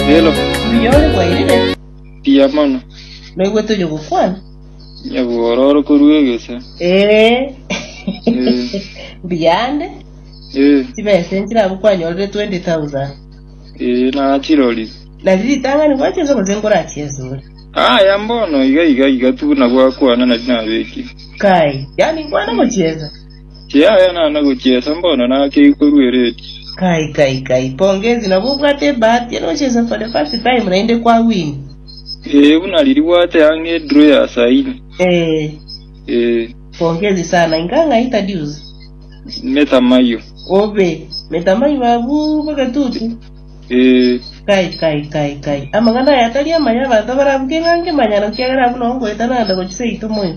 Rero Buya ore bwairire, mbuya mono, noigwe toiyo gokwana. nyabworo ore korua egese. Eh. Mbuya ande, Eh, chibesa enchire abwo kwanyorire 20,000. eh, nachirori. Nari ritang'ani gwacha ense gose nkorachia esore. Aya mbono iga iga iga tu nabwo akwana nari nabeki. Kai, yani nkwana gochiesa. Yaya nana gochiesa mbono nakeigwe korwa eredio. Kai kai kai pongezi nabo obwate ebahati ere ochese for the first time naende kwa win. Ee buna riri bwate ang'e draw ya saini. Ee. Ee. Pongezi sana inga ng'a introduce. Metamayo. Obe. Metamayo abu bogetutu. Ee. Kai kai kai kai. Amang'ana aya tari amaya abanto barabuke ng'a nkemanyano kiagera abu nongoeta nanda gochi seito moyo.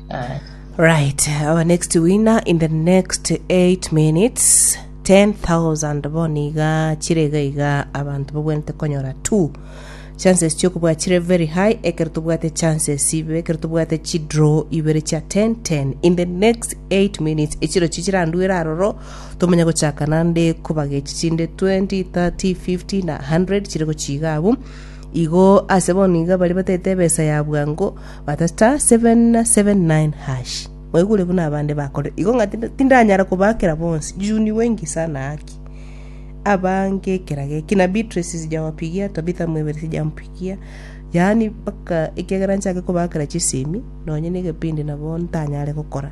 Right, our next winner in the next 8 minutes 10,000 boni iga chire iga iga abantu bagwenete konyora two chances chiokobwa chire very high ekero tobwate chances ibe ekero tobwate chidraw ibere chia 10 10 in the next 8 minutes echiro chi chiranduere aroro tomanya gochaka nande kobaga echi chinde 20 30 50 na 100 chire gochiga abu igo ase bono iga bari batete ebesa ya bwango Mwaigure buna abande bakorire igo ng'a tindanyara kobaakera bonsi, juu ni wengi sana haki. Abange ekera geki, na Beatrice sijabapigia, Tabitha mwebere sijamopigia, yaani mpaka ekiagera nchake kobaakera chisemi, nonye na egebindi nabo ntanyare gokora.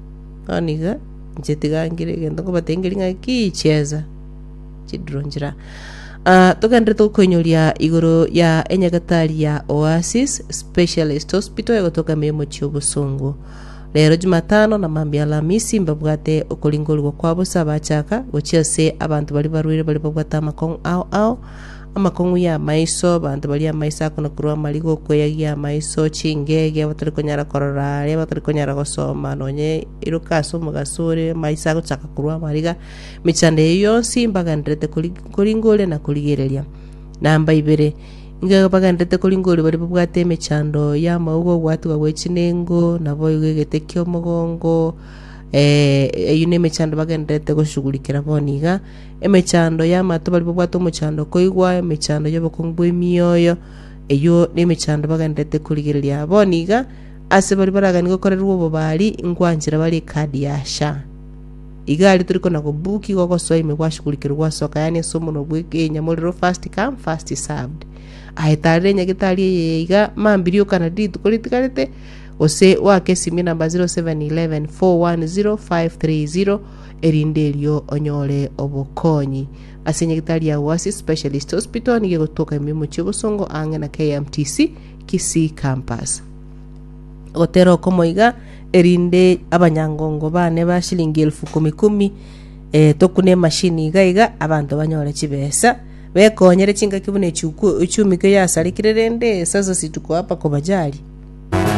Bono iga inche tiga ngire egento nkobatengeria ng'a ki chiesa chidiro nchire aa. Ah, togenderete gokoinyoria igoro ya enyagetari ya Oasis Specialist Hospital egotoka emeremo chi'obosongo. Rero Jumatano na mambia Alamisi mbabwate okoringorigwa kwa bosa abachaka, gochia ase abanto baria barwaire baria babwate amakong'u ao ao, Amakong'u y'amaiso, abanto baria amaiso akonakurwa amarigo, okweyagia amaiso, chingege, abatari konyara korora, aria abatari konyara gosoma, nonye iroka ase omogaso ore amaiso agochaka korwa amariga, emechando eyio yonsi mbagendererete kori- koringoria na korigereria. Namba ibere, inga bagendererete koringoria baria babwate emechando y'amauga, ogwatigwa gwe chinengo, naboigo egete ki'omogongo, eh, eyio nemechando bagendererete goshugurikera bono iga, Emechando y'amato baria babwate omochando koigwa emechando y'obokongu bw'emioyo, eyio nemechando bagendererete korigereria. Bono iga, ase baria baragani gokorerwa obobari, inkwanchera bare ekadi ya sha. Iga aria tori kona kobuki igo gosoa ime gwashugurikirwe gwasoka yaani ase omonwa bwe enyamorero first come first served. Aye tarera enyagetari eyeye iga mambiri okana rituko ritigarete gose wake esimie namba 0711 410 530 Erinde erio onyore obokonyi ase nyagetari ya Wasi Specialist Hospital nigo egotoka emeremo chia obosongo ang'e na KMTC Kisii Campus. Gotera okomo iga erinde abanyangongo bane ba shilingi elfu kumi kumi eh, tokune emashini iga iga abanto banyore chibesa bekonyere chingaki buna echuku- echumikio yasarekire rende sasa situko apa kobajari